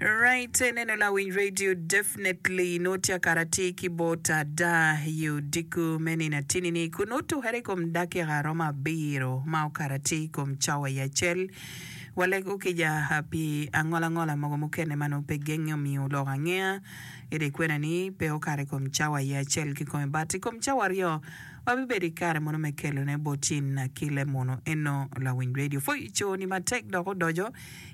Right, neno lawiny radio definitely nongo tye kara atir ki bot ada i odiko me nino atini ni kun nongo tukere i kom dakika romo abiro ma okato atir i kom cawa i acel. Walego kica ah, pi angolangola mogo mukene ma nongo pe genge omiyo oloko angeya ento ikwena ni pe okato i kom cawa i acel kikome but i kom cawa aryo wabibedo i kare mono me kelone bot in ki lemono eno lawiny radio. Foico ni matek dok odoco.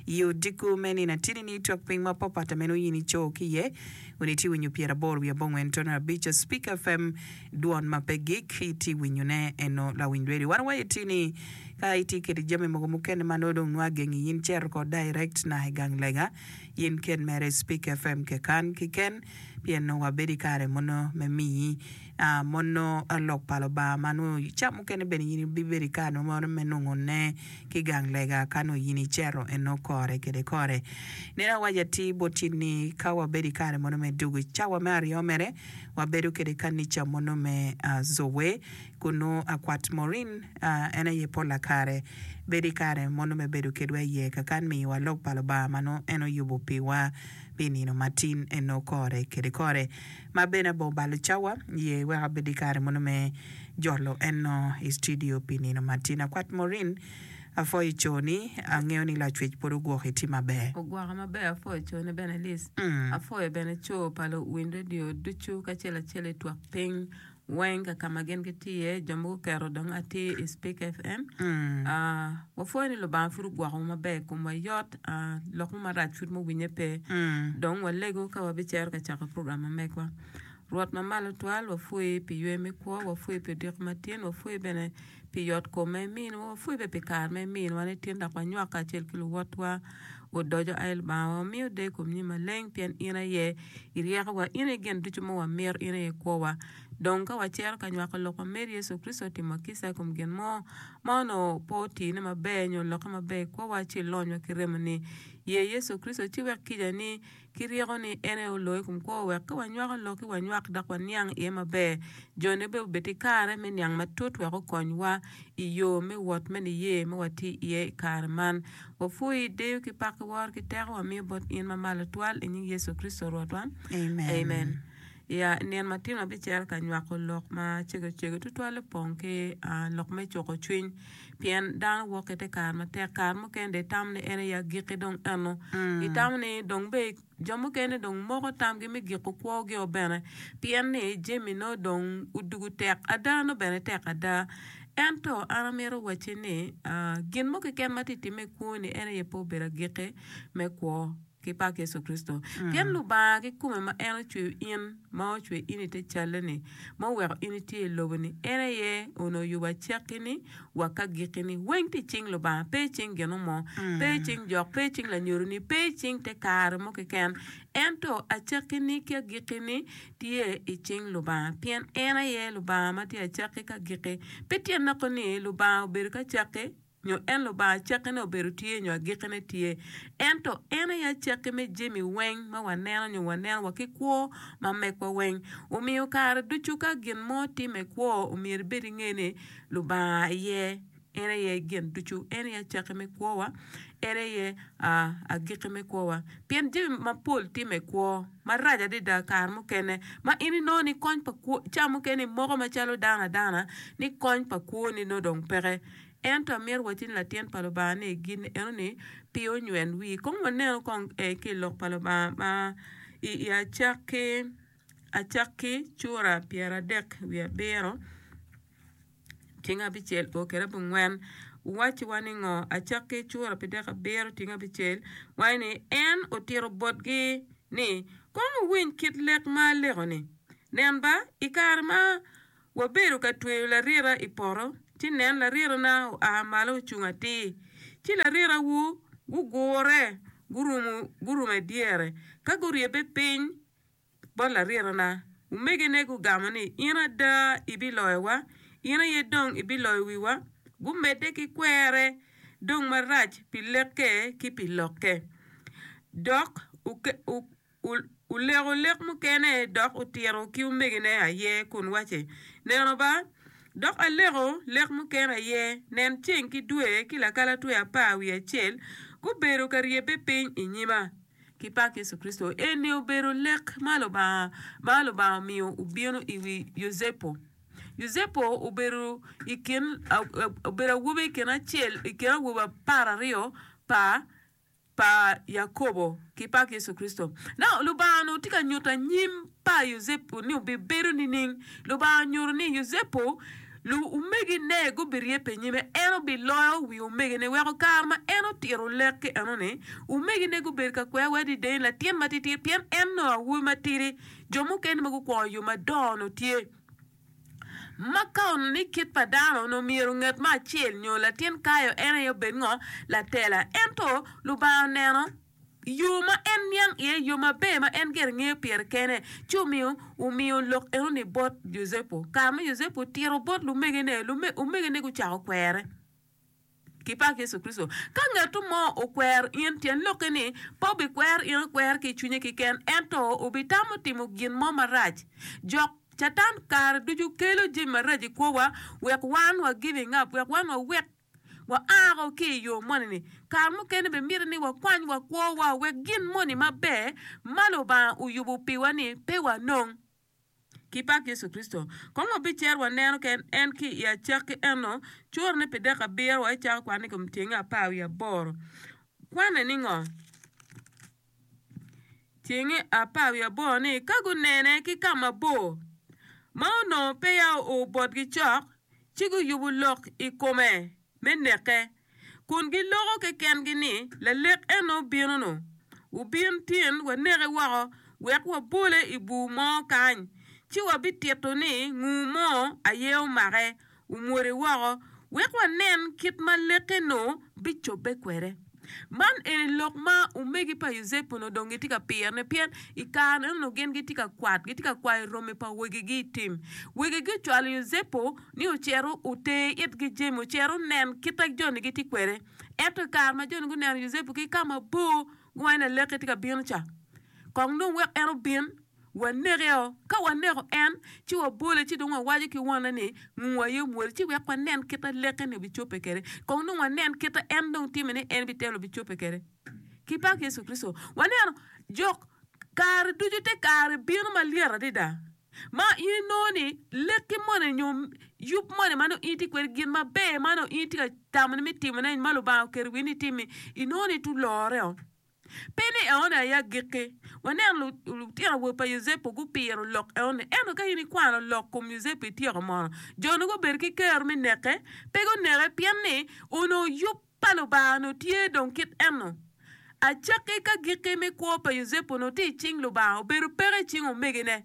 I odiko me nino atidi-ni, twak piny ma papat ma en oye ni co ki iye wene tye winyo pyera aboro wiye abongwen tono abic. A Speaker FM, Dwon ma pe gik, itye winyone eno lawiny radio. Wan waye tye ni ka itye kede jami mogo mukene ma nongo dong nwa agengi in cer oko direct naka i gang lega in ken mere i Speaker FM kekan kiken pien nongo wabedo i kare mono me miyi Mono lok pa Lubanga ma nongo ca mukene bene in ibibedo i kare meno me nongo ne ki gang lega ka nongo in icito eno kore kede kore. Nino awaco atir boti ni ka wabedo i kare meno me dwogo i cawa me aryo mere, wabedo kede kanica meno me Zoe kun nongo akwat Maureen, en aye pol a kare bedo i kare meno me bedo kedwa iye kakan miyowa lok pa Lubanga ma nongo en oyubo piwa pi nino matin eno kore kede kore. ma bene abongo balo cawa ye wek abed ki kare mono me jolo eno i studio pi nino ma tin. Akwat Maureen, Apwoyo i coni. Angeyo ni Lacwec pwod ogwoki, itye maber. Ogwoka maber. Apwoyo coni bene Liz. Apwoyo bene co pa luwiny radio ducu kacel acel i twak piny. weng ka kama gin gitye iye jo mogo oketo dong atir i speak fm wapwoyo ni lubanga pud ogwokowa maber komwa yot lok mo marac pud muwinye pe dong walego ka wabicero ka cako program ma megwa rwot ma malo twal wapwoyi pi ywe me kwo wapwoyi pi odiko matin wapwoyi bene Pi yotkom ma iminwa, wapwebe pi kare ma iminwa ni tin dok wanywak kacel ki luwotwa. Wudoco, ai Lubanga, wa wamiyo der i kom nyimi maleng, pien in aye iryekowa, in aye gin ducu ma wamito, in aye kwowa. Dong ka wacito ka nywako lok ma Meri Yecu Kricito otimwa kica i kom gin mo ma onongo pe otine maber nyo lokke maber i kwowa, ci ilonywa ki remoni. Ye Yecu Kricito ci wek kica ni ki ryeko ni en aye oloo i kom kwo wek ka wanywako lok ci wanywak dok waniang iye maber. Jone bene obed ki kare me niang matut wek okonywa i yo me wot me niye ma watye iye i kare man. Wapwoyi, deyo ki paki, woro ki teko wamiyo bot in ma malo twal i nying Yecu Kricito Rwotwa. Amen. I nino matino abicel ka nywako lok ma cegocego tutwal opong ki lok me cuko cwiny pien dano wok ki te kare matek kare mukene dong itamo ni en aye agikki dong eno itamo ni dong bene jo mukene dong moko tamgi me giko kwogio bene pien ni jami nongo dong odwogo tek ada nongo bene tek ada ento an amito wacci ni gin mo keken ma tye ka timme i kwoni en aye pe obedo agikki me kwo. ki pak Yecu Kricito, pien Lubanga kikome ma en ocweyo in, ma ocwe in i te calle-ni, ma oweko in itye i lobo-ni, en aye onongo oyubo acakki-ni wa ka gikki-ni, weng tye i cing Lubanga, pe i cing gino mo, pe i cing jok, pe i cing lanyodo-ni, pe i cing te kare mo keken, ento acakki-ni ki agikki-ni tye i cing Lubanga, pien en aye Lubanga ma tye acakki ki agikki. Pe tye noko ni Lubanga obedo ki acakki nyo en Lubanga acakkine obedo tye nyo agikkine tye, ento en aye acakki me jami weng ma waneno nyo waneno wa ki kwo ma mekwa weng. Omiyo kare ducu ka gin mo timme kwo omyero ibed inge ni Lubanga aye en aye gin ducu, en aye acakki me kwo wa, en aye agikki me kwo wa. Pien jami mapol timme kwo marac adada kare mukene ma in inongo ni kony pa kwo, ca mukene imoko macalo dano adana ni kony pa kwoni nongo dong peke. Ento amito wacci ni latin pa Lubanga ni gin eno ni pe onywel wii. Kong waneno kong ee ki i Lok pa Lubanga ma i, i acak ki acak ki cura pyeradek wiye abiro cing abicel o kede abongwen wacciwa ni ngo? Acak ki cura pi dek abiro cing abicel waco ni en otito botgi ni, Kong wuwiny kit lek ma aleko-ni, Nen ba, i kare ma Wabedo ka tweyo larira i poto, ci nen, larirana oa malo ocung atir, ci larirawu gugure gurumo gurumo i dyere. Ka guryebbe piny bot larirana, omegine gugamo ni, 'In ada ibiloyowa, in aye dong ibiloyo wiwa? Gumedde ki kwere dong marac pi lekke ki pi lokke, dok oke. oleko lek mukene dok otito ki omegine aye kun wacci, Neno ba, dok aleko lek mukene aye, nen, ceng ki dwe ki lakalatwe apar wiye acel gubedo ka ryebbe piny i nyima. Ki pak Yecu Kricito, eni obedo lek ma Lubanga ma Lubanga omiyo obino i wi Yucepu. Yucepu obedo i kin, obedo awobi i kin acel, i kin awobe apar aryo pa. pa Yakobo ki pak Yecu Kricito. Nongo Lubanga-nu tye ka nyuto anyim pa Yucepu ni obibedo nining? Lubanga onyuto ni Yucepu luomegine gubiryebbe i nyime, en obiloyo wi omegine, weko kare ma en otito lek ki enoni, omegine gubedo ka kwere wai adida ni latin matitir, pien en nongo awobi matidi. Jo mukene ma gukwongo yo madongo-nu tye. Ma ka onongo ni kit pa dano onongo myero nget me acel nyo latin kayo en aye obed ngo? Latela. Ento Lubanga oneno yo ma en niang iye, yo maber ma en gire ngeyo pire kene, ci omiyo omiyo lok enoni bot Yucepu. Kare ma Yucepu otito bot lumegene, omegene gucako kwere. ki pak Yecu Kricito. Ka ngatu mo okwer in, tyen lokke ni pe obikwer in akwer ki i cwinye keken, ento obitamo timo gin mo marac. Jok, Catan, kare ducu kelo jami marac i kwowa wek wan wa giving up, wek wan wawek, wa a woko ki i yo moni-ni. Kare mukene bene myero ni wakwany wa kwowa wek gin moni maber ma Lubanga oyubo piwa-ni pe wanong. ki pak Yecu Kricito. Kong wabicer waneno ken en ki i acakki eno, curone pi dek abiro wa icako kwanne i kom tyenge apar wiye aboro. Kwanne ni ngo? Tyenge apar wiye aboro ni, Ka gunene ki ka mabor, ma onongo peya oo botgi cok, ci guyubo lok i kome, me neke, kun giloko kekengi ni, 'Lalek eno bino-nu. Wubin tin waneke woko, wek wabole i bur mo kany, ci wabitito ni ngur mo aye omake, omwodo woko, wek wanen kit ma lek-ki-nu bicobbe kwede. Man eni lok ma omegi pa Yucepu onongo dong gitye ka pirone pien i kare-ni onongo gin gitye ka kwat, gitye ka kwayo romi pa wegigi i tim. Wegigi ocwalo Yucepu ni ocit oter itgi jami, ocit onen kit ma joni gitye kwede. Ento i kare ma joni guneno Yucepu ki ka mabor, guwaco ni, Laleki tye ka bino ca, kong dong wek en obin. Wanekeo. Ka waneko en, ci wabole, ci dong wawaco ki wonne ni, 'Nguu aye omwoli, ci wek wanen kit ma Lek-ki-ni obicobbe kwede. Kong dong wanen kit ma en dong timme ni en bitelo bicobbe kwede. Ki pak Yecu Kricito! Waneno, jok, kare ducu te kare bino malyet adada, ma in inongo ni lekki moni nyo yub moni ma nongo in itye kwede, gin maber ma nongo in itye ka tamo ni me timone, ma Lubanga oketo wiyi ni itimmi, inongo ni ituloreo. Pe ni eoni aye agikki. Wanen lutino awobe pa Yucepu gupiro lok eoni. Ento ka in ikwano lok kom Yucepu ityeko mono, jo-nu gubedo ki kero me neke? Pe guneke, pien ni onongo yub pa Lubanga onongo tye dong kit eno. Acakki ka gikki me kwo pa Yucepu onongo tye i cing Lubanga, obedo peke i cing omegine.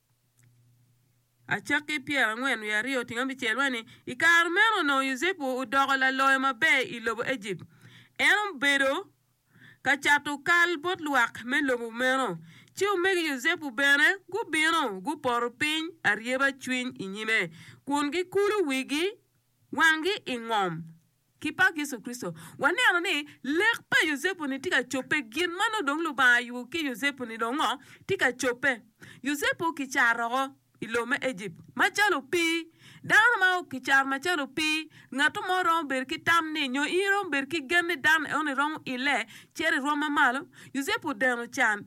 Acakki pyerangwen wiye aryo otingo abicel waco ni, I kare meno onongo Yucepu odoko laloyo maber i lobo Ejipt. En obedo ka cato kal bot lwak me lobo meno. Ci omegi Yucepu bene gubino, gupoto piny aryeba cwiny i nyime kun gikulo wigi wanggi i ngom. Ki pak Yecu Kricito, waneno ni lek pa Yucepu-ni tye ka cobbe. Gin ma nongo dong Lubanga oyubo ki Yucepu-ni dong ngo? Tye ka cobbe. Yucepu kicar oko i lobo me Ejipt macalo opii. Dano ma kicar macalo opii, ngato mo romo bedo ki tam ni, nyo in iromo bedo ki gen ni dan eno-ni romo ile cito i rwom ma malo? Yucepu odeno can.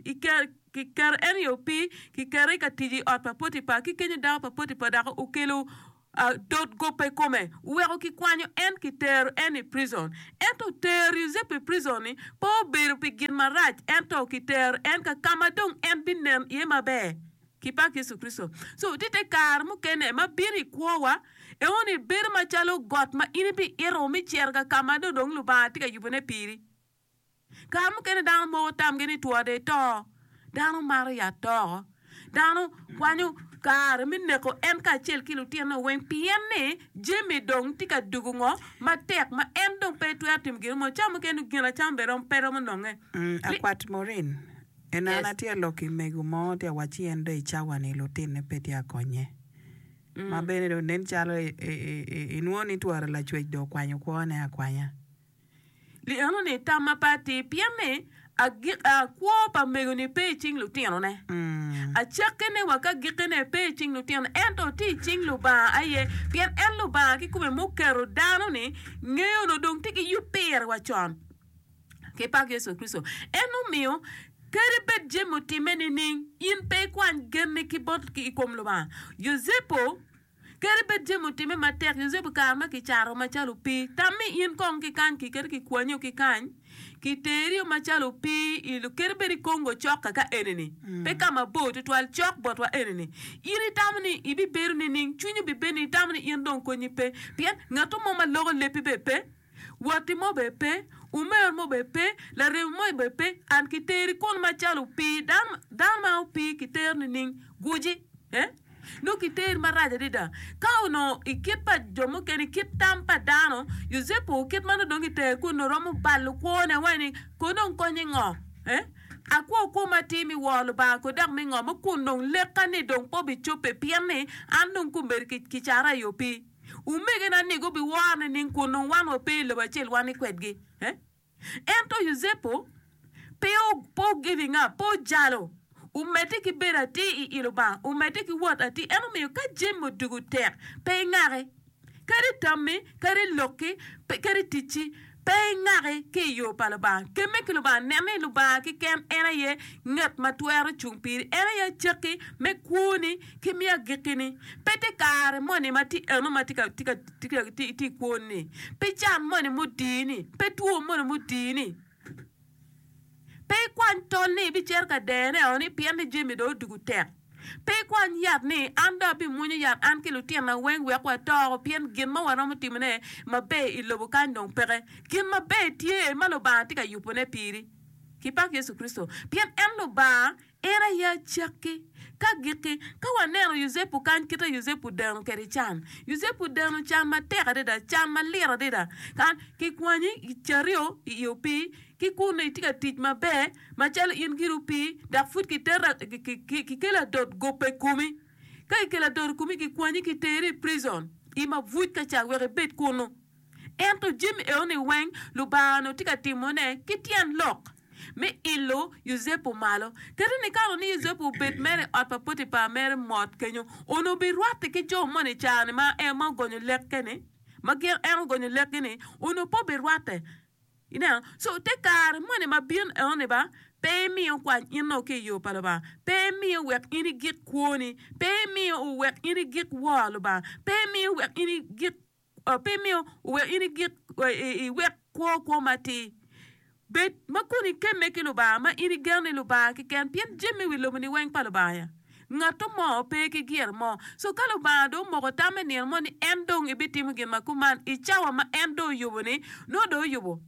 Kiketo en i opii, kiketo i ka tic i ot pa Potipa, ki kenyo dako pa Potipa dok okelo Atot gobbe i kome, weko kikwanyo en kitero en i prison. Ento tero Yucepu i prison-ni pe obedo pi gin marac, ento kitero en ka ka ma dong en binen iye maber. Ki pak Yecu Kricito! So, tye te kare mukene ma bino i kwowa, enoni bedo macalo got ma in ibiito me cito ka ka ma dong dong Lubanga tye ka yubone piri. Kare mukene dano moko tamgi ni two dong eto. Dano maro yat toko. Dano kwanyo kare me neko en kacel ki lutinone weng pien ni jami dong tye ka dugo ngo matek ma en dong pe twero timo gin mo. Cawa mukene dong gin acama bene pe romo nonge. Akwat Maureen, En an atye ka lok ki mego mo tye ka wac ci en dong i cawa ni lutinone pe tye ka konye. Ma bene dong nen calo inwongo ni twere lacwec dong okwanyo kwone akwanya. Li enoni tam ma pe atir pien ni agika kwo pa mego-ni pe i cing lutinone. Acakke ni wa ka gikkene pe i cing lutinone ento tye i cing Lubanga aye, pien en Lubanga kikome muketo dano-ni ngeyo onongo dong tye ki yub pire wa con. Kipak Yecu Kricito! En omiyo kadi bed jami otimme nining, in pe ikwany genni ki bot i kom Lubanga. Yucepu. Kadi bed jami otimme matek, Yecu obi kare ma kicato macalo opii. Tam ni in kong kikany ki kadi kikwanyo ki kany, kiterio macalo opii i lo, kadi bed i Congo cok kaka eni-ni, pe ka mabor twatwal, cok botwa eni-ni. In itamo ni ibibedo nining? Cwinyi bibed ni itamo ni in dong konyi pe, pien ngatto mo ma loko lebbi bene pe. Watti mo bene pe, umer mo bene pe, laremi mo bene pe, an ki teri kun macalo opii dano, dano ma opii ki tero nining? Guji, eh? Nongo ki teri marac adada. Ka onongo i kit pa jo mukene, i kit tam pa dano, Yucepu kit ma nongo dong ki tere kun nongo romo balo kwone wai ni, Kono dong konye ngo? Eh? Akwo kwo ma atir mi wor Lubanga kono dok mi ngom-mi kun dong lekka-ni dong pe obicobbe pien ni an dong kombeddi ki, ki cara i opii. Omegena ni gubiworo nining kun nongo wan wape i lobo acel wan ni kwedgi? Ento Yucepu pe ogiving up, pe ojalo, omedde ki bedo atir i i Lubanga, omedde ki wot atir. En omiyo ka jami odwogo tek, pe ingaki, kadi tammi, kadi lokki, kadi ticci. Pe ingaki ki i yo pa Lubanga. Kemme ki Lubanga. Nen ni Lubanga keken en aye ngat ma twero cung piri. En aye acakki me kwoni ki me agikkini. Pe te kare moni ma tye eno ma itye ka kwon-ni, pe can moni ma odii-ni, pe two moni ma odii-ni. Pe ikwany tol ni ibicito ka dero-neo ni pien ni jami dong odiko tek. Pe ikwany yat ni, 'An dong abimwonyo yat an ki lutinna weng wek wato woko pien gin ma waromo timone maber i lobo kany dong peke. Gin maber tye ma Lubanga tye ka yubone piri. Kipak Yecu Kricito, pien en Lubanga. In aye acakki. Ka gikki, ka waneno Yucepu kany kite Yucepu deno kede can. Yucepu deno can matek adada, can malit adada. Kan, kikwanyi i cario i i opii, ki kunnu itye ka tic maber macalo in giri opii, dok pud kiterra, ki, ki, ki, kikelo adot gope i komi. Ka kikelo adot i komi, kikwanyi kiteri i prison, i mabuc ka ca wek ibed kunnu. Ento jami enoni weng Lubanga onongo tye ka timone ki tyen lok me ilo Yucepu malo. Kadi nikato ni Yucepu obed mere i ot pa Potipar mere mot kenyo, onongo obirwatte ki jo moni i careni ma en ma ogonyo lekke-ni, ma gin en ogonyo lekgi-ni, onongo pe obirwatte. Ineno? Co, te kare moni ma bino enoni ba, pe imiyo kwany in dong ki i yo pa Lubanga, pe imiyo wek in igik kwoni, pe imiyo wek in igik woro Lubanga, pe imiyo wek in igik. Pe imiyo oweko in igik iwek kwo kwo matir. Bed ma kun ikemme ki Lubanga ma in igeno ni Lubanga keken, pien jami me wi lobo-ni weng pa Lubanga. Ngatto mo pe ki gire mo. So ka Lubanga dong omoko tamme nino mo ni en dong ebitimo gin ma kuman i cawa ma en dong oyubo-ni, nongo dong oyubo.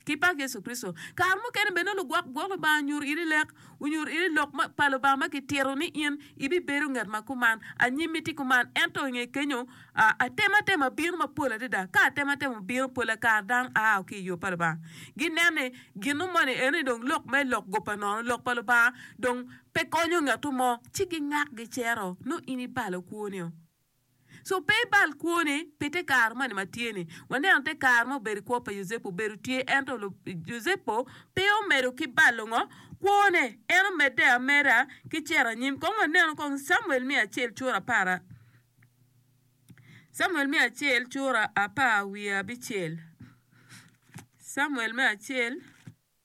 Ki pak Yecu Kricito, kare mukene bene nongo lugwok gwok Lubanga onyuto iri lek, onyuto iri lok pa Lubanga ma kitito ni in ibibedo ngat ma kuman, anyim miti kuman. Ento i nge kenyo, atematema bino mapol adada. Ka atematema obino, pole kare dano ao ki i yo pa Lubanga. Ginen ni gino moni en ni dong lok me lok goba nono, lok pa Lubanga, dong pe konyo ngatto mo, ci gingak gicero, nongo in ibalo kwonio. Co pe ibal kwone pi te kare moni ma tye-ni. Waneno te kare ma obedo i kwo pa Yucepu. Obedo tye ento Yucepu pe omedo ki balo ngo? Kwone. En omedde ameda ki cito anyim. Kong wanenu kong Camuel me acel cura apar Camuel me acel cura apar wiye abicel Camuel me acel.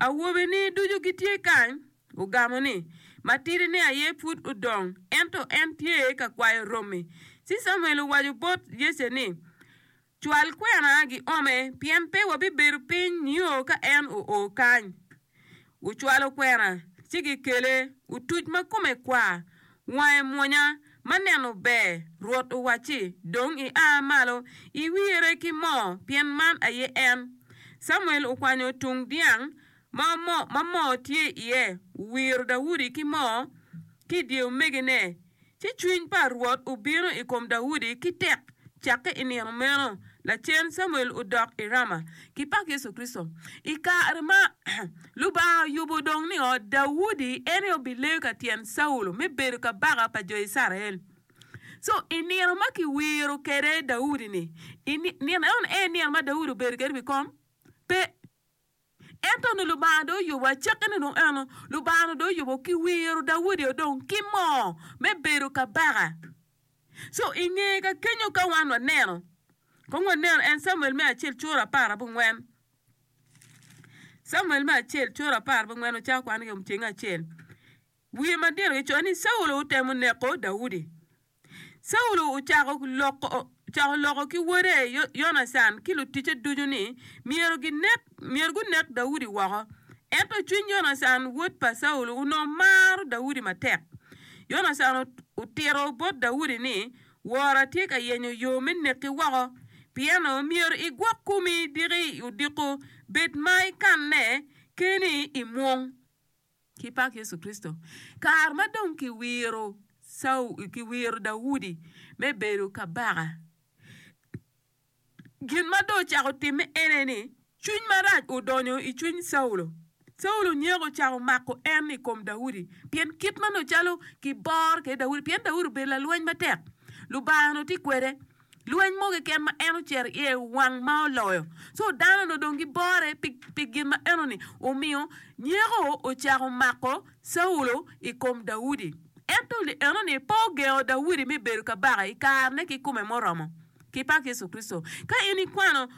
Awobeni ducu gitye kany? Ogamo ni, Matidi-ni aye pud odong, ento en tye ka kwayo romi. Ci Camuel owaco bot Yece ni, Cwal kwena giome, pien pe wabibedo piny nio ka en oo kany. Ocwalo kwena, ci gikele, otuc ma kome kwar, Wange mwonya, ma neno ber. Rwot owacci, Dong ia malo, iwire ki moo, pien man aye en. Camuel okwanyo tung dyang ma moo ma moo tye iye, owiro Daudi ki moo ki i dye omegine. Ci cwiny pa Rwot obino i kom Daudi ki tek. Cakke i nino meno, lacen Camuel odok i Rama. Kipak Yecu Kricito i kare ma. Lubanga oyubo dong ni ot Daudi en aye obileyo ka tyen Caulo me bedo kabaka pa jo Icrael. Co i nino ma kiwiro kwede Daudi-ni, i nino eno aye nino ma Daudi obedo kwede i wi kom? Pe. Ento onongo Lubanga dong oyubo acakkine dong eno, Lubanga onongo dong oyubo kiwiro Daudi-o dong ki moo me bedo kabaka. Co i nge ka kenyo ka wan waneno, kong wanenu en Camuel me acel cura apar abongwen. Camuel me Acel cura apar bangwen ocako kwano yomceng acel. Wiye madito kicoyo ni Caulo otemo neko Daudi. Caulo ocako cako loko ki wode Yonacan ki luticce ducu ni myero gunek Daudi woko. Ento cwiny Yonacan wod pa Caulo onongo maro Daudi matek. Yonacan otito bot Daudi ni Wora tye ka yenyo yo me neki woko. Pieno myero igwok komi diki i odiko bed ma ikanne keni i mwong. Ki pak Yecu Kricito, kare ma dong kiwiro Daudi me bedo kabaka, Gin ma dong ocako timme ene ni, cwiny marac odonyo i cwiny Caulo. Caulo nyeko ocako mako en i kom Daudi, pien kit ma nongo calo kibor kwede Daudi, pien Daudi obedo lalweny matek. Lubanga onongo tye kwede. Lweny mo keken ma en ocito iye wang ma oloyo. Co dano onongo dong gibore pi, pi gin ma enoni. Omiyo nyeko ocako mako Caulo i kom Daudi. Ento li enoni pe ogengo Daudi me bedo kabaka i karene kikome muromo. Ki pak Yecu Kricito. Ka in ikwano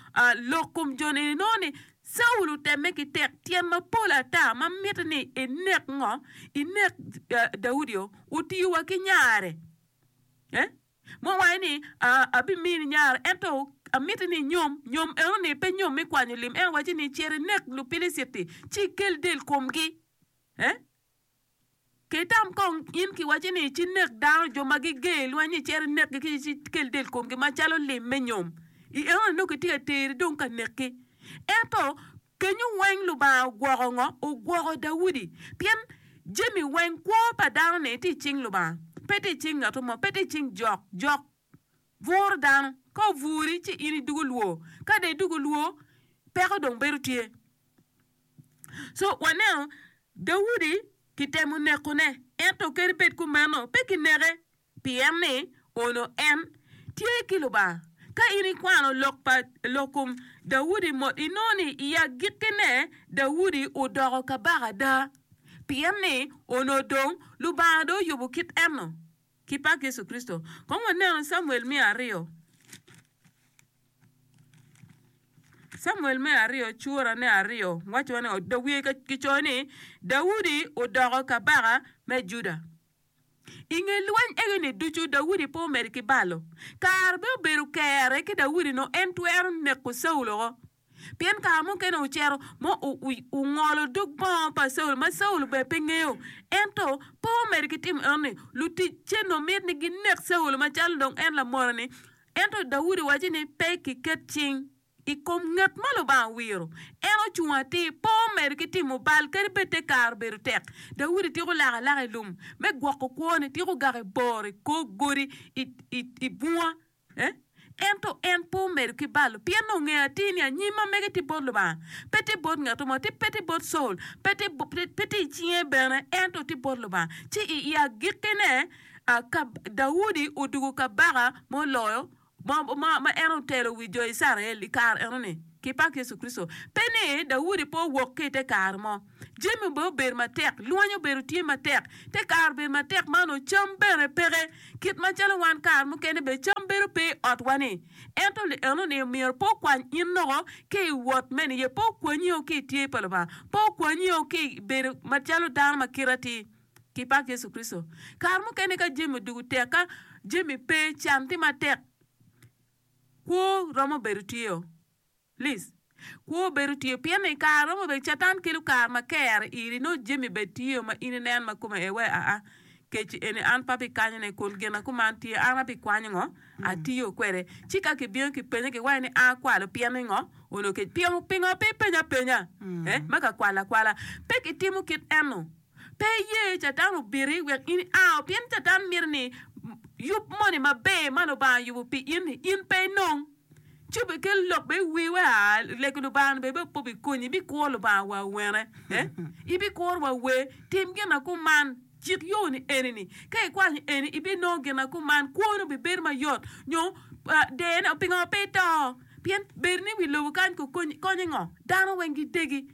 lok kom joni, inongo ni Caulo otemme ki tek tyen mapol ata ma mitte ni enek ngo? Enek Daudi-o. Otiyo wa ki nyare. Ma owaco ni, Abimini nyare, ento amiti ni inyom. Nyom eno ni pe nyom me kwanyo lim. En owaco ni, Cer inek Lupiliciti, ci ikel del komgi. Ki tam kong in kiwacci ni ci nek dano, jo ma giger i lweny-nyi cito inekgi ki ci kel del komgi macalo lim me nyom. I enoni nongo kitye ka teri dong ka nekki. Ento, kenyo weng Lubanga ogwoko ngo? Ogwoko Daudi. Pien jami weng, kwo pa dano-ni tye i cing Lubanga, pe tye i cing ngat mo, pe tye i cing jok. Jok buro dano, ka oburi ci in idwogo lwor, ka dong idwogo lwor, peko dong bedo tye. So waneno Daudi kitemo nekone, ento kadi bed kumeno pe kineke, pien ni onongo en tye ki Lubanga. Ka in ikwano lok pa lok kom Daudi mot, inongo ni i agikkine Daudi odoko kabaka ada, pien ni onongo dong Lubanga dong oyubo kit eno ki pak Yecu Kricito. Kong wanenu Camuel me aryo. Camuel me aryo cura ne aryo waco ni da wiye ki coyo ni Daudi odoko kabaka me Juda. I nge lweny ege ni ducu Daudi pe omedo ki balo. Kare me obedo kere ki Daudi no en twero neko Caulo woko. Pien kare mukene ocero mo ungolo dog bongo pa Caulo ma Caulo bene pe ngeyo. Ento pe omedo ki timo eno ni luticce no mit ni ginek Caulo macalo dong en lamono ni Ento Daudi wacci ni, Pe kiket cing i kom ngat ma Lubanga owiro, en ocung atir, pe omedo ki timo bal, kadi bed te kare obedo tek. Daudi tiko lak alaka i lum me gwoko kwone, tiko gaki bor i kor godi i bunga. Ento en pe omedo ki balo, pien dong ongeyo atir ni anyim ma mege tye bot Lubanga, pe tye bot ngat mo, pe tye bot Col, pe tye i cinge bene, ento tye bot Lubanga. Ci i agikkine, Ka Daudi odwogo Kabaka ma oloyo, ma en otelo wi jo Icrael i kare eno-ni ki pak Yecu Kricito, pe ni Daudi pe owok ki i te kare mo. Jami obed obedo matek, lweny obedo tye matek, te kare obedo matek ma onongo cam bene peke. Kit macalo wan kare mukene bene cam bedo pe i otwa-ni, ento lienoni myero pe okwany in loko ki i wot me niye, pe okwanyi o ki i tye pa Lubanga, pe okwanyi o ki i bedo macalo dano ma kite atir. Ki pak Yecu Kricito, kare mukene ka jami odwogo tek, ka jami pe, can tye matek, kwo romo bedo tye-o. Liz, Kwo bedo tye-o pien ni i kare romo bedo Catan kelo kare ma ker i iri, nongo jami bene tye-o ma in ineno ma kome ee wai aa. Kec-ci eni, an pe abikanye ni kun gin ma kuman tye, an abikwanyo ngo? Atiyo kwede. Ci ka kibiino kipenye giwaco ni a kwalo, pien ni ngo? Onongo kec, pingo pe ipenyo apenya? Ee, ma ka kwalo akwala. Pek itimo kit eno. Pe iye Catan obiti wek in iao, pien Catan mito ni yub moni maber ma Lubanga oyubo pi in, in pe inong. Ci obikel lok bene i wii wek a lego Lubanga-ni bene bene pe obikonyi. Ibikuro Lubanga wa wene? Ibikuro wa wer? Tim gin ma kuman. Cik yo-ni eni-ni. Ka ikwanyo eni, ibinongo gin ma kuman. Kwoni obibedo mayot. Nyo dene, pingo pe ito? Pien bedoni i wi lobo kany kokonyi konyo i ngo? Dano weng gidegi.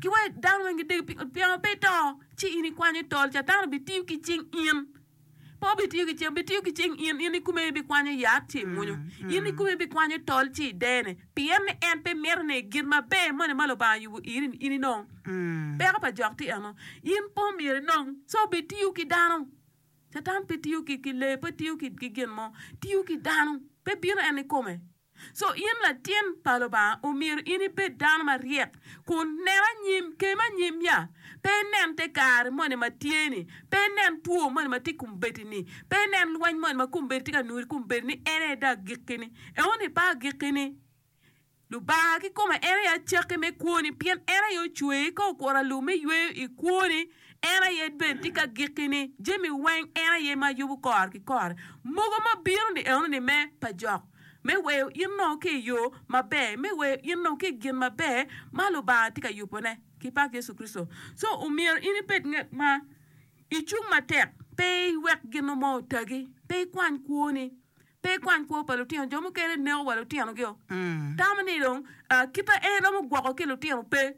Ki wek dano weng gidegi pingo pien pe ito, ci in ikwanyo i tol, Catan obitiyo ki cing in. Pe obitiyo ki cing, obitiyo ki cing in, in ikome ibikwanyo yat ci imwonyo. In ikome ibikwanyo tol ci idene, pien ni en pe mito ni gin maber moni ma Lubanga oyubo iri in inong. Peko pa jok tye eno, in pe omyero inong, so obitiyo ki dano. Catan pe tiyo ki lee, pe tiyo ki gin mo, tiyo ki dano, pe bino en ikome. Co in latin pa Lubanga omyero in ibed dano maryek kun nen anyim, kem anyim ya. Pe inen te kare moni ma tye ni, pe inen two moni ma tye i kom bedi ni, pe inen lweny moni ma kom bedi tye ka nuri kom bedi ni en aye dong agikki ni. Eno ni pe agikki ni. Lubanga kikome en aye acakki me kwoni pien en aye ocweyi ka okuro alum me yweyo i kwoni en aye bene tye ka gikki ni. Jami weng en aye ma yubo kore ki kore. Mogo ma bino ni eno ni me pa jok. me weyo in nongo ki i yo maber, me weyo in nongo ki i gin maber ma Lubanga tye ka yubone. Kipak Yecu Kricito! So, omyero in ibed ngat ma icung matek, pe iwek gin mo otagi, pe ikwany kwoni, pe ikwany kwo pa lutino. Jo mukene neko wa lutinogio, tamo ni dong kit ma en romo gwoko ki lutino pe.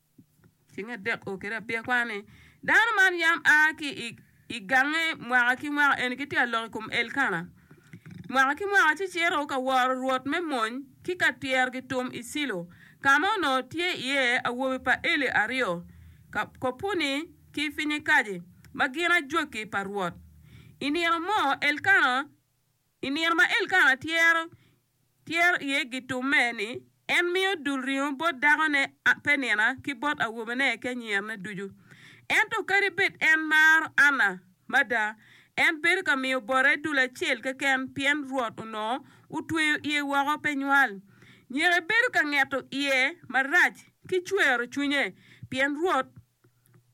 Ceng adek o kede abiya kwano ni, Dano man yam a ki i gange mwaka ki mwaka, eni gitye ka lok i kom Elkana mwaka ki mwaka, ci cito ka woro Rwot me mony ki ka tyero gitum i Cilo, ka ma onongo tye iye awobe pa Eli aryo, Kopuni ki Pinyekaji, ma gin ajwaki pa Rwot. I nino mo Elkana. I nino ma Elkana tyero tyero iye gitumme, ni en miyo dul ringo bot dakone Penina ki bot awobene ki anyirane ducu. Ento kadi bed en maro Anna mada, en bedo ka miyo bote dul acel keken pien Rwot onongo otweyo iye woko pe nywal. Nyeke bedo ka ngeto iye marac ki cwero cwinye pien Rwot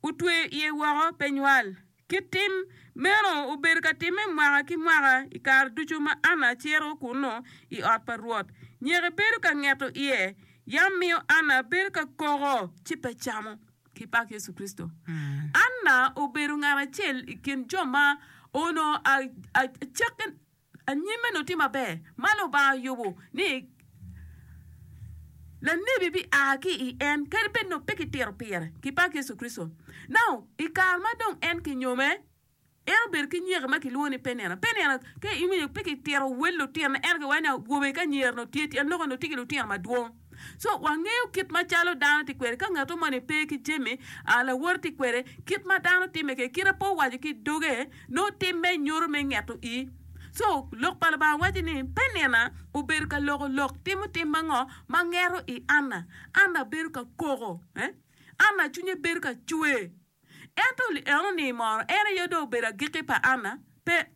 otweyo iye woko pe nywal. Kit tim meno obedo ka timme mwaka ki mwaka i kare ducu ma Anna cito kunnu i ot pa Rwot. Nyeke bedo ka ngeto iye, yam miyo Anna bedo ka koko ci pe camo. Ki pak Yecu Kricito, Anna obedo ngat acel i kin jo ma onongo acakke Anyim eno tye maber ma Lubanga oyubo ni lanebi bia ki i en, kadi bed ni pe kitito pire ki bak Yecu Kricito. Nao i kare ma dong en kinyome, en obedo ki nyeka ma kilwongo ni Penina. Penina, ka iwinyo pe kitito wel lutino, ento kiwaco ni awobe ki anyira onongo tye, tyen lok-ki onongo tye ki lutino madwong. So wangeyo kit macalo dano tye kwede ka ngato moni pe ki jami a lawote tye kwede, kit ma dano timme kede kite pe owaco ki doge nongo timme nyuto me ngeto i. So lok pa Lubanga waco ni Penina obedo ka loko lok timo tim ma ngo ma ngeto i Anna. Anna bedo ka koko eh? Anna cwinye bedo ka cwe. Ento li eno ni moro en aye dong obedo agiki pa Anna? Pe.